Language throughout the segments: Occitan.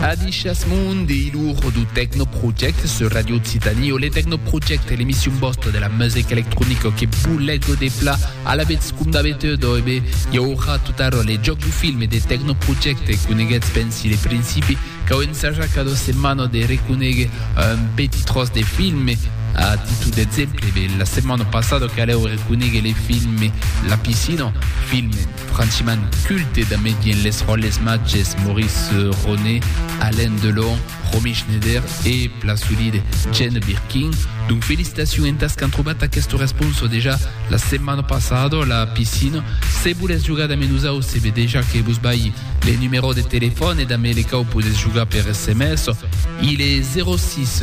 Adishas Mundi, l'our du Techno Project sur Radio Occitanie o le Techno Project e l'emission bosta de la musique électronique que boulego de plat à la bête comme d'habitude e bé hi aura tout à l'heure les jocs du film et des Techno Project et coneguets ben si les principes cau ensajar cada setmana de reconèguer un petit tros de film a títol d'exemple bé la setmana passada que alleu reconèguer les films la piscina film Franchiman culte da medien les ròles matges Maurice Ronet, Alain Delon, Romy Schneider e plan solide Jane Birkin. Donc felicitacion entas qu'an trobat aqueste responso dejà la setmana passada la piscina. Se volètz jogar damb nosau se ve dejà que vos balhi le numero de telefòn e damb le quau podètz jogar per sms. Il est 06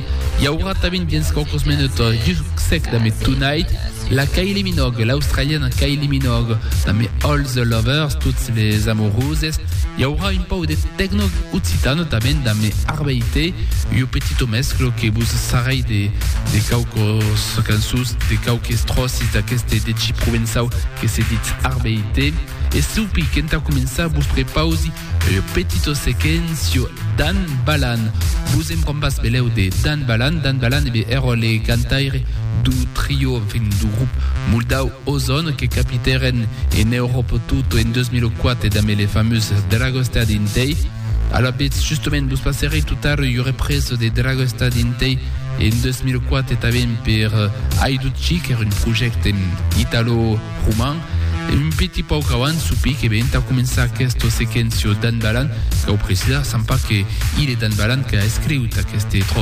I aurà tanben dins quauques minutas Dirk Sec damb Tonight, la Kylie Minogue, l'australiana Kylie Minogue, damb All the Lovers, tots les amoroses. I aurà un pau de tecno occitano tanben damb Arbeite, io petito mesclo que vos sarrai de, de quauques cançons, de quauques tròcis d'aqueste deci provençau que se ditz Arbeite. E s'aupi, qu'entà començar vos prepausi Lo petito sequencio Dan Balan. Vos en quan pas belèu de Dan Balan? Dan Balan e be èrò le cantaire du trio, en fin, du grup moldau Ozon que capitèren en Euròp tot en 2004 damb le famós Dragostea dintei. Alò betz, justement, vos passerei tot ara ua represa de Dragostea dintei en 2004 tanben per Haidut Chic, qu'èra un projècte italo, Roman, e un petit pauc abans soupir que ve entà començar aquesta sequéncia d'Anne Balan, cau precisar, sembla que hilhe d'Anne Balan qu'a escriut aquesta tròça.